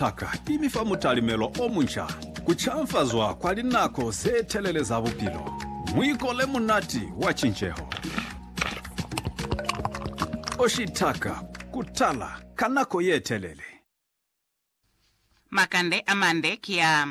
Paka i mi fa mutalimelo o munca, ku canfazwa kwa linako ze telele za bupilo, muiko le munati wa cinceho. O shitaka ku tala ka nako ye telele. Makande a mande ki a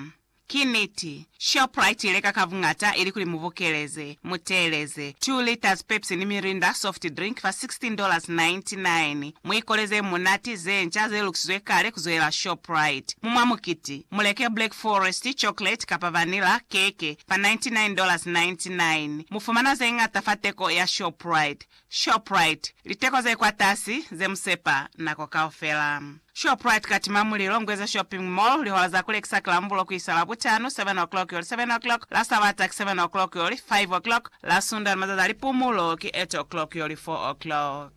Ki niti, Shoprite i leka ka buñata ilikuli mu bokeleze, mu teeleze, two liters Pepsi ni Mirinda soft drink fa sixteen dollars ninety nine. Mu ikoleze ye munati, ze nca, ze lukisizwe kale ku zoela Shoprite. Mu mwa mukiti, mu leke Black Forest, chocolate, kapa vanilla, keke, fa ninety nine dollars ninety nine. Mu fumana ze ñata fa teko ya Shoprite. Shoprite, Liteko ze kwatasi, ze musepa nako kaufela. Shoprite katima mulilo, Ngweza Shopping Mall, Lihola za kulekisa ki Lambulo kuisa Labutano, 7 o'clock yoli 7 o'clock, la Sabata ki 7 o'clock yoli 5 o'clock, la Sunda ni mazazi a lipumulo ki 8 o'clock yoli 4 o'clock.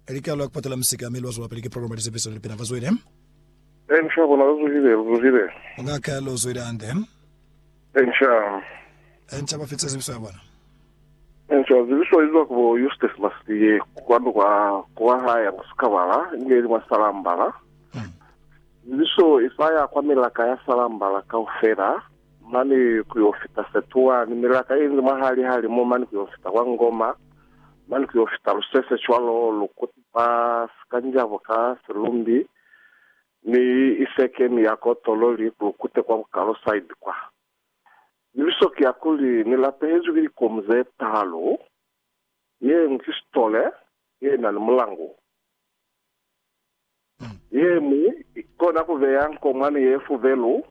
Likalo la kupatala misika mi lwazwelapili ki programa ya lisepiso ni lipina. Bazwile. Ee, mushaba bona, lu zuhile, lu zuhile. Ngaka, lu zuhile hande. Enca. Enca ba fitisa zibiso ya bona. Enca, zibiso ye zwa ku bo Eustace Maslie, kwanu kwa, kwa ha ya mwa Sikabala, i ne ili mwa Salambala. Zibiso i sa ya kwa milaka ya Salambala kaufela, mane ku yo fita Setua, ni milaka ye nzi mwahali ha limu mane ku yo fita kwa Ngoma, mane ku yo fita Lusese, cwalo, lu kuti ba Sikanjabo ka Silumbi, Mi i seke ni ya ko tolo li kulukute kwa bukalo side kwa. Libiso ki ya kuli ni lapehezwi ki likomu ze talu, yeñwi ki sitole ye na ni mulangu, yeñwi i kona ku beya nkomwani ye fubelu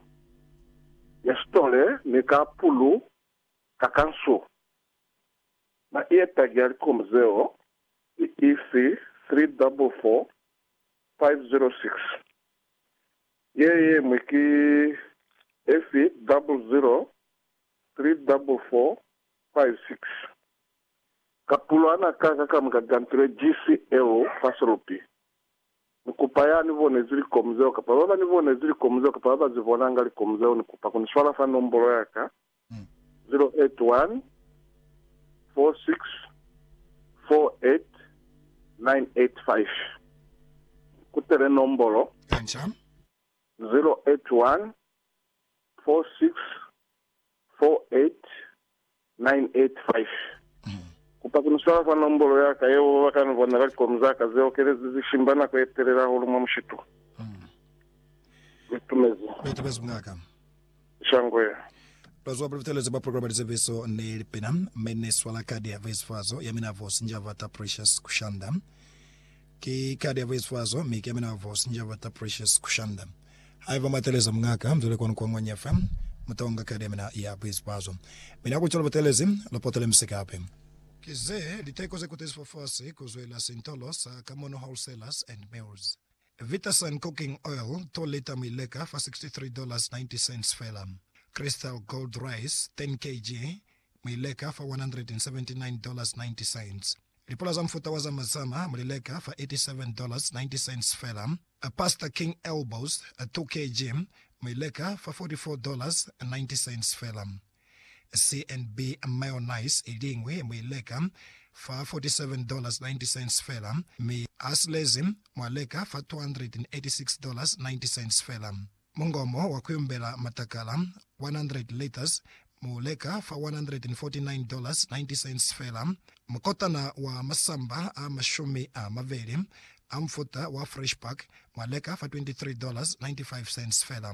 ya sitole ni ka pulu ka kansu. Na i ye tagi ya likomu zeo ki ifi 344 506. Ye yeñwi ki efi? Double zero, three double four, five six. Kapulwana ka ka kamuka gantile GCL. Faselupi. Ni kupa ya ni bonezi likomu zeo kapa baba ni bonezi likomu zeo kapa baba zi bonanga likomu zeo ni kupa kuni swala fa nombolo yaka 0814648985 ku telenommbolo 0814648985 kupa ku ni swala fa nommbolo ya ka yeo ba ka ni bona ka likomi za ka ze okelezi ze shimba nako ye telele hahulu mwa mushitu. Litumezi. Shangwe. Bazwa ba Lipitalezo ba Programa Lizeviso ne Lipina, mi ni swala kadi ya Voisifazo ya mina Vosi Njavata Precious Kushanda. Ki kadi ya Voisifazo, mi ki ya mina Vosi Njavata Precious Kushanda. Haiba mwa teleza mungaka mzwile kwanu kwa Ngwanya FM, mutonga kadi ya mina ya Voisifazo. Mi na kucwalo butelezi, lu potele misi kape. Ki ze liteko ze kutezi fafasi ku zwela Sintolo sa Kamono Wholesalers and Mills. Vitasoy Cooking Oil to lita mu i leka fa $63.90 fela. Crystal Gold Rice 10 kg mu i leka fa $179.90. Lipula za mufuta wa zama zama mu li leka fa $87.90 fela. Pasta King Elbows 2 kg mu i leka fa $44.90 fela. CNB mayonnaise i liñwi mu i leka fa $47.90 fela, mi asilezi mu a leka fa $286.90 fela. Mungomo wa ku yumbela matakala, 100 litres, mu u leka fa $149.90 fela. Mukotana wa masamba a mashumi a mabeli a mufuta wa Fresh Pack mu a leka fa $23.95 fela.